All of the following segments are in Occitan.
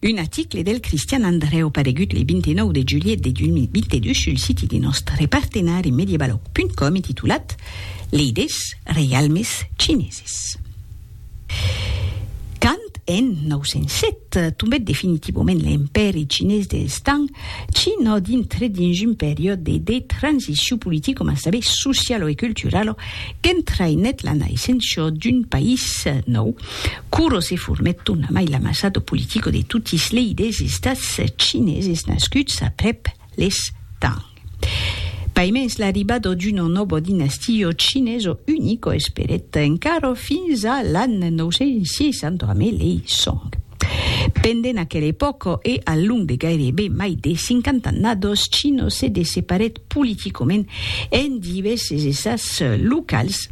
Un aticle del Cristian Andrèu paregut le 29 de julhet de 2022 sul siti de nòstre partenari medievalog.com e titulat Leidés reialmes chineses. Quand en 907 tombèt definitivament l'Empèri chinés dels Tang, China dintrèt dins un periòde de de transicion politico mas tanben socialo e culturalo qu'entraïnèt la naissença d'un país nòu, Kuro se formèt tona mai l'amassado politico de totis lei des estats chineses nascuts aprèp les Tang. Paimens l'arribado d'uno nobo dinastio chineso unico esperèt encara fins a l'an 960 amé lei Song. Pendent aquel epòco e al long de gairebe mai de cinquant'annados, Chino se desseparèt politicament en divèses estats locals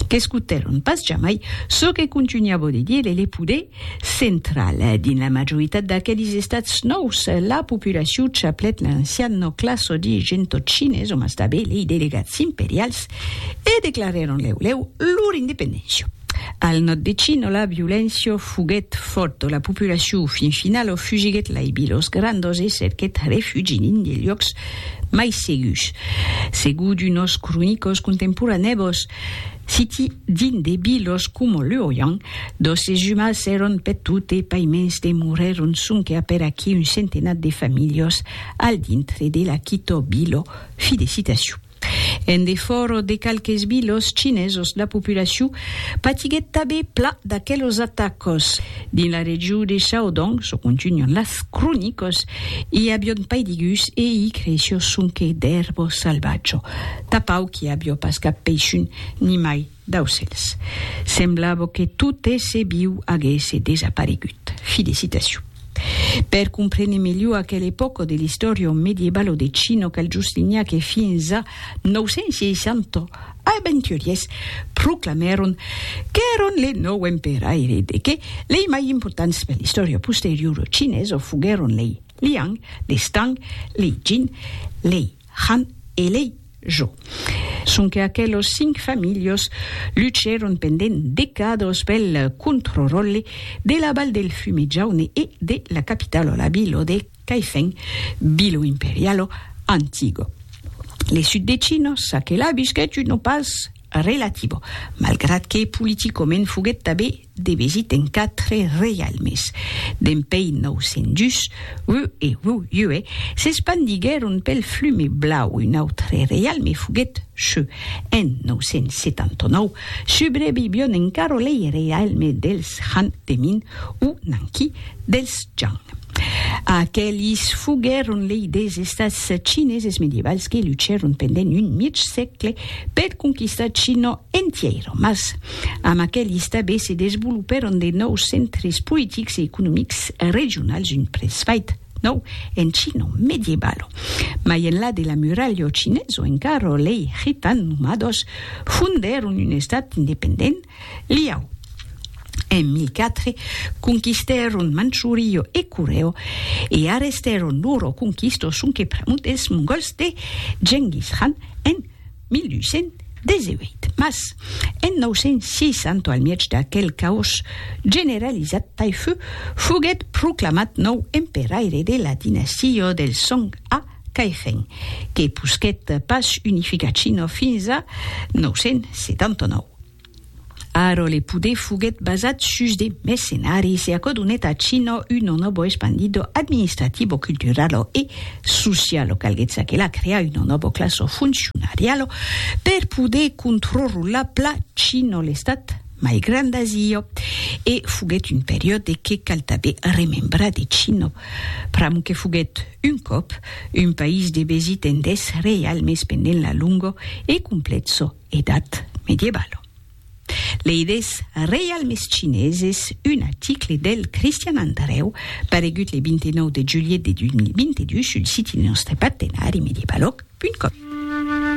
qu'escotèron pas jamai çò que contunhava de dire le poder central. Dins la majoritat d'aquelis estats nòus, la populacion chaplèt l'ancian nòclasso de gentotchines, o mas tanben lei delegats imperials, e declarèron lèu lèu lor independéncia. Al nòd de China, la violéncia foguèt fòrta, la populacion fin finala fugiguèt lai bilhòs grandos e cerquèt refugi dins de luòcs Mai segus, segur d'unos cronicos contemporanèbos, siti dins de bilos coma Lurian, dos esumas èron peth tot e paiments demorèron sonque a per aquí un centenat de familhos al dintre de l'aquitò bilo. Fi de citacion. En defòra de qualques bilos chinesos la populacion patiguèt tabé pla d'aquelos atacos. Dins la region de Shaodong, çò contunhan las cronicas, i avion pas de gus e i creishió sonque d'èrbo salvatjo. Tapau qu'i avió pas cap peishun, nimai d'aucèls. Semblava que tot èsser viu aguèsse desaparegut. Fi de citacion. Per comprene melhor aquela epòca de l'istòria medievalo de China, cal juslinhar que fins a 960, aventuriers proclamèron qu'èron le nòu emperaire de que lei mai importants per l'istòria posteriora chinesa foguèron lei Liang, lei Tang, lei Jin, lei Han e lei Zhou. Sonque aquelos cinc familhas luchèron pendent decadas pel controròlle de la Val del Fume Jaune e de la capitala, la vila de. qu'ai fèn Bilo Imperialo Antigo. Le sud de Chino ça que la bisquèt un opàs relativo, malgrat que politicomènt foguèt tabé debesit en quatre reialmes. Dempèi 902, Wu e Wu Yue s'espandiguèron pel Flume Blau, un autre reialme foguèt Shu. En 979, subrevivion encara lei reialme dels Han de Min o Nanqi dels Zhang. Aquelis foguèron lei des estats chineses medievals que luchèron pendent un mièg sègle per conquistar China entièra, mas amb aquelis tanben se desvolopèron de nòus centres politics e economics regionals, un presfait nòu en China medievala. Mai enlà de la muralha chinesa encara lei Khitan nomados fondèron un estat independent, Liao, en 1004, conquistèron Manchurio e Coreo e arrestèron loro conquistos sonque pr'amor dels mongòls de Genghis Khan en 1218. Mas, en 960, al mièg d'aquel caòs generalizat, Taifu foguèt proclamat nòu emperaire de la dinastia dels Song a Cairèn que posquèt pas unificar China fins a 979. Ara le poder foguèt basat sus de mercenaris e aquò donèt a China un enòbo espandido administrativo, culturalo e socialo. Calguèt çaquelà crear un enòbo classo funcionarialo per poder controrrolar pla China, l'estat mai grand d'Asia. E foguèt un periòde que cal tanben remembrar de China, pr'amor que foguèt Un còp, un país de besit en deth reialme espendent la longo e completso edat medievalo. Lei des reialmes chineses, un aticle del Cristian Andreu, paregut le 29 de julhet de 2022 sul siti de nòste partenari medievalog punt com.